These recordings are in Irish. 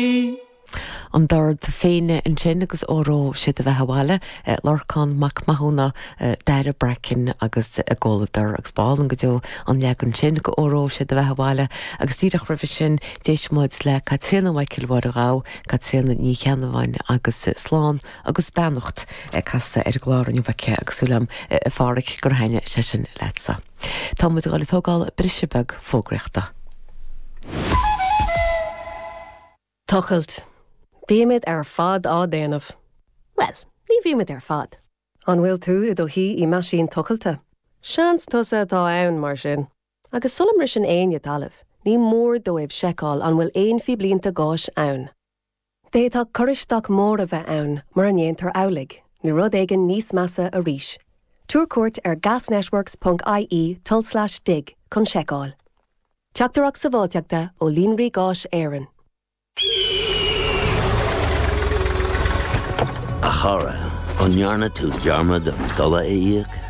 Ní. an Bord féine ansin agus Óró Sé do Bheatha 'Bhaile, Lorcán Mac Mathúna, Daire Bracken agus a gcomhluadar agus ba álainn go deo an leagan sin de Óró Sé do Bheatha 'Bhaile agus díreach roimhe sin d'éist muid le Caitríona Mhichael Mháire Ghabha Caitríona Ní Cheannabháin agus slán agus beannacht casta ar an gclár inniu aici agus súil agam a Pháraic gur thaitne sé sin leatsa. Tá muid ag dul ag tógáil briseadh beag fógraíochta. Tochailt. Bímid ar fad á déanamh. Bhuel, ní bhímid ar fad. An bhfuil tú i do shuí i meaisín tochailte? Seans tusa atá ann, mar sin. Agus sula mbriseann éinne talamh, ní mór dóibh seiceáil an bhfuil aon phíblínte gáis ann. D'fhéadfadh cur isteach mór a bheith ann mura ndéantar amhlaidh, nó rud éigin níos measa arís. Tabhair cuairt ar gasnetworks ponc ie tulslais dig chun seiceáil. Teachtaireacht Sabháilteachta ó Líonraí Gáis Éireann. A chara, an ndearna tú dearmad an dola a íoc?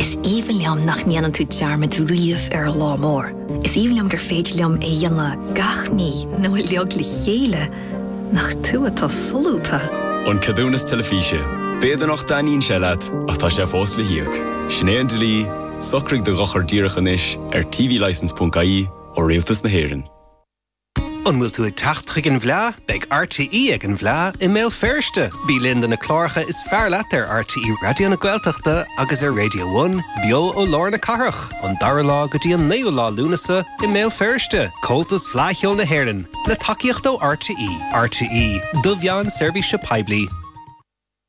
Is aoibhinn liom nach ndéanann tú dearmad riamh ar an lá mór. Is aoibhinn liom gur féidir liom a dhéanamh gach mí nó uilig le chéile. Nach tú atá solúbtha! An Ceadúnas Teilifíse. B'fhéidir nach dtaitníonn sé leat, ach tá sé fós le híoc. Sin é an dlí, socraigh do dhochar díreach anois ar tvlicense.ie ó Rialtas na hÉireann. An bhfuil tú ag teacht chuig an bhFleá? Beidh RTÉ ag an bhFleá i mBéal Feirste! Bí linn do na cláracha is fearr leat ar RTÉ Raidió na Gaeltachta agus ar Radio One, beo ó lár na cathrach, ón 2ú lá go dtí an 9ú lá Lúnasa i mBéal Feirste! Comhaltas Fleá Cheoil na hÉireann, le tacaíocht ó RTÉ. RTÉ, do mheán seirbhíse poiblí.